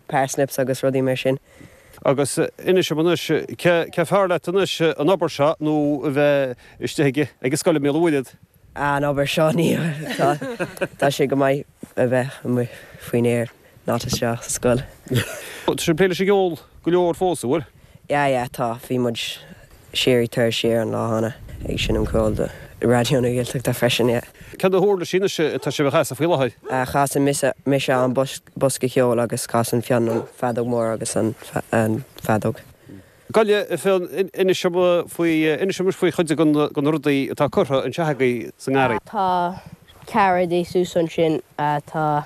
parsnips agus rudaí mar sin. Agus anois, anois, cé acu is fearr leat anois, an obair seo nó a bheith istigh ag an scoil i mBaile Uí Fhiacháin? Ah, an obair seo, ní, tá, tá sé go maith a bheith amuigh faoin aer, not isteach sa scoil. Tá sibh ag plé leis an gceol go leor fós, a bhfuil? yeah yeah tá bhí muid síoraí tur siar an lá cheana ag seinm ceol do Raidió na Gaeltachta freisin yeah. Cad na huirlisí anois atá sibh a chasadh faoi láthair? Ah casann mise an bosca ceoil agus casann Fionn an feadóg mhór agus an feadóg. Gabh i leith Fionn, inis dom faoi, inis dom anois faoi chuid de na rudaí atá curtha anseo agaibh sa ngarraí. Tá Cairéid thuas ansin tá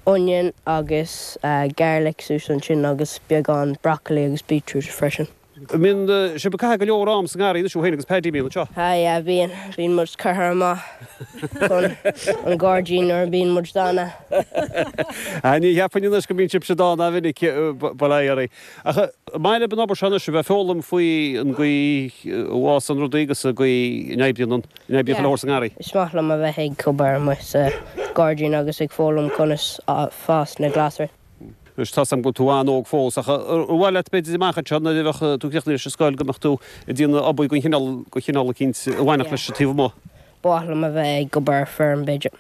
onion agus garlic thuas ansin agus beagán broccoli agus beetroot freisin. Bíonn sibh ag caitheamh go leor am sa ngarraí anois ó shin agus Paddy a bhíonn anseo. Sea, yeah, bíonn. Bíonn muid curtha amach chun an gairdín nuair a bíonn muid dána. Ní cheapfainn anois go mbíonn sibhse dána go minic, but aye, arae. Ach an maith libh an obair seo anois, a bheith ag foghlaim faoi an gcaoi a bhfásann rudaí agus an gcaoi a n-oibríonn an obair atá le fáil sa ngarraí. Is maith liom a bheith ag obair amuigh sa ghairdín agus ag foghlaim conas fás na glasraí. Anois tá 's agam go bhfuil tú an-óg fós, ach ar mhaith leat b'fhéidir amach anseo nuair a bheadh tú críochnaithe leis an scoil go mbeadh tú ag déanamh obair de chineál eicínt a bhainfeadh leis an taobh amuigh? Yeah. Ba mhaith liom a bheith ag obair ar feirm b'fhéidir.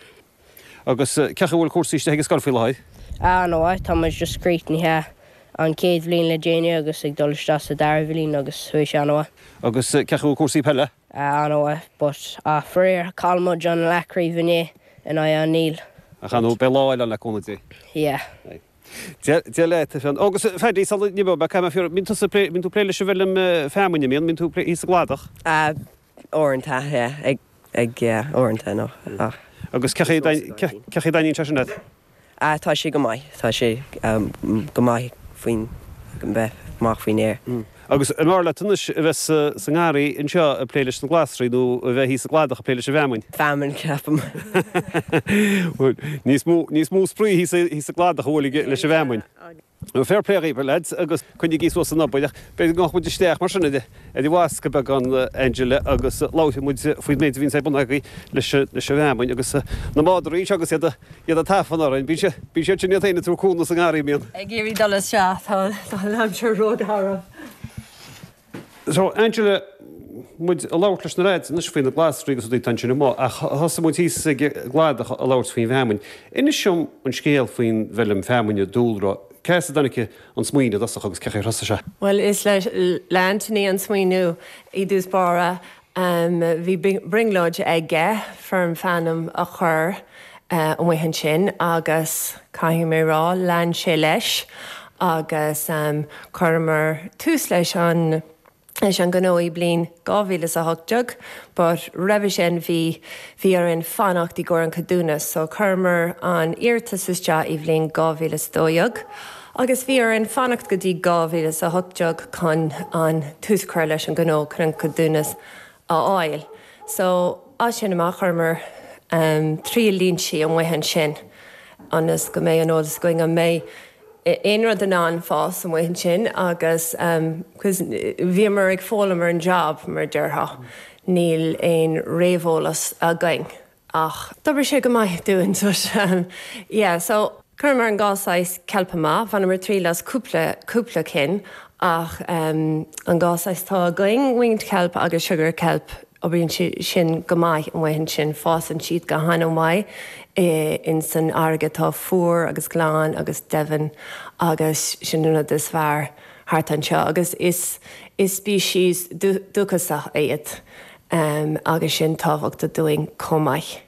Agus cé chaoi a bhfuil cúrsaí istigh ag an scoil faoi láthair? Ar ndóigh, tá muid just críochnaithe an chéad bhliain le déanaí agus ag dul isteach sa dara bhliain agus bhí sé an-mhaith. Agus cé chaoi a bhfuil cúrsaí peile? Ar ndóigh, but ach faraor, chaill muid an leathchraobh inné in aghaidh an Níl. Ach anyway, beidh lá eile ann le cúnamh Dé. Yeah. Aye. Dia leat, a Fionn. Ó, agus Phaddy, sula n-imeoidh mé, caithfidh mé a fhiafraí, bíonn tusa ag plé, bíonn tú ag plé leis an bhfeilm feamainne, a mbíonn, bíonn tú ag plé thíos sa gcladach? Ah. uaireanta, ag, yeah, uaireanta, no, ach. Agus cé chaoi a dtaitníonn sé sin leat? Ah, tá sé go maith, tá sé go maith faoin, bheith amach faoin aer. Agus an bhfearr leat anois a bheith sa ngarraí anseo ag plé leis na glasraí nó a bheith thíos sa gcladach ag plé leis an bhfeamainn? Feamainn, ceapaim. Bhuel, níos mó, níos mó spraoi thíos sa gcladach ag plé leis an bhfeamainn. Fair play dhaoibh, lads, agus coinnigí suas an obair, ach b'fhéidir go ngabhadh muid isteach mar sin ar an bhfascadh beagán, Angela, agus labharfaidh muid faoin méid a bhíonns ar bun agaibh leis an bhfeamainn agus na madraí anseo agus iad ag tafann orainn. Bíonn siad sin iad féin ag tabhairt cúnamh sa ngarraí, a mbíonn? Ag iarraidh dul isteach, tá an aimsir rógarbh. So, Angela, muid ag labhairt leis na leaids anois faoi na glasraí agus rudaí atá ansin amuigh, ach thosaigh muid thíos ag an gcladach ag labhairt faoin bhfeamainn. Inis dom an scéal faoin bhfeilm feamainne, Dúlra, cé as a dtáinig an smaoineamh i dtosach agus cé chaoi ar thosaigh sé? Bhuel, is le Anthony an smaoineamh i dtús báire, Bhí brionglóidí aige feirm fheamainne a chur amuigh ansin agus, caithfidh mé a rá, lean sé leis agus chuireamar tús leis an ngnó i mbliain 2018 ach roimhe sin bhí bhí orainn fanacht í gcomhair an ceadúnas so chuireamar an iarratas isteach í bhliain 2012 agus bhí orainn fanacht go dtí 2018 chun an tús a chur leis an gnó chun an ceadúnas a fháil. So, as sin amach, chuireamar triail línsí amuigh ansin ionas go mbeidh an eolas againn an mbeidh aon rud in ann fás amuigh ansin agus cos bhíomar ag foghlaim ar an job, mar a déarfá, níl aon réamheolas againn. Ach d'oibrigh sé go maith dúinn, so sin, yeah, so. Chuireamar an dhá saghas ceilp amach, bhaineamar triail as cúpla, cúpla cinn, ach an dhá saghas atá againn, winged kelp agus sugar kelp, oibríonn sin go maith amuigh ansin, fásann siad go han-mhaith in san fharraige atá fuar agus glan agus domhain agus sin an rud is fearr thart anseo agus is, is species dúchasach iad. Am agus sin tábhachtach dúinn chomh maith.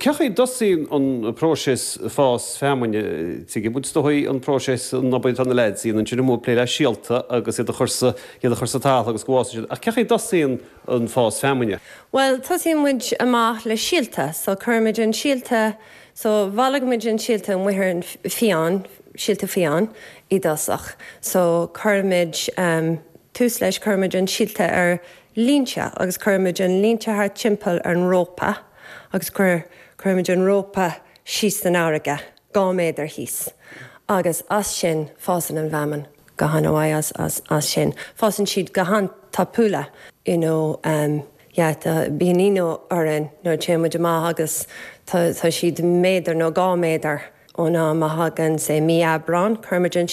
Cé chaoi a dtosaíonn an próiseas fás feamainne? Tuigeann muid, is dóigh, an próiseas an obair atá na leaids ag déanamh amuigh ag plé le síolta agus iad a chur sa iad a chur sa talamh agus go bhfásann siad. Ach cé chaoi a dtosaíonn an fás feamainne? Bhuel, tosaíonn muid amach le síolta. So, cuirimid an síolta, so, bhailigh muid an síolta amuigh sa fiáin, síolta fiáin i dtosach. So, cuirimid, em, tús leis, cuirimid an síolta ar línte agus cuirimid an línte thart timpeall ar an rópa agus cuir cuirimid an rópa síos san fharraige, dhá méadar thíos agus as sin fásann an fheamainn go han mhaith as as as sin fásann siad go han tapa you know ehm yeah tá bíonn ionadh orainn nuair a téann muid amach agus tá tá siad méadar nó dhá méadar ón am a thagann sé mí Aibreán cuirimid an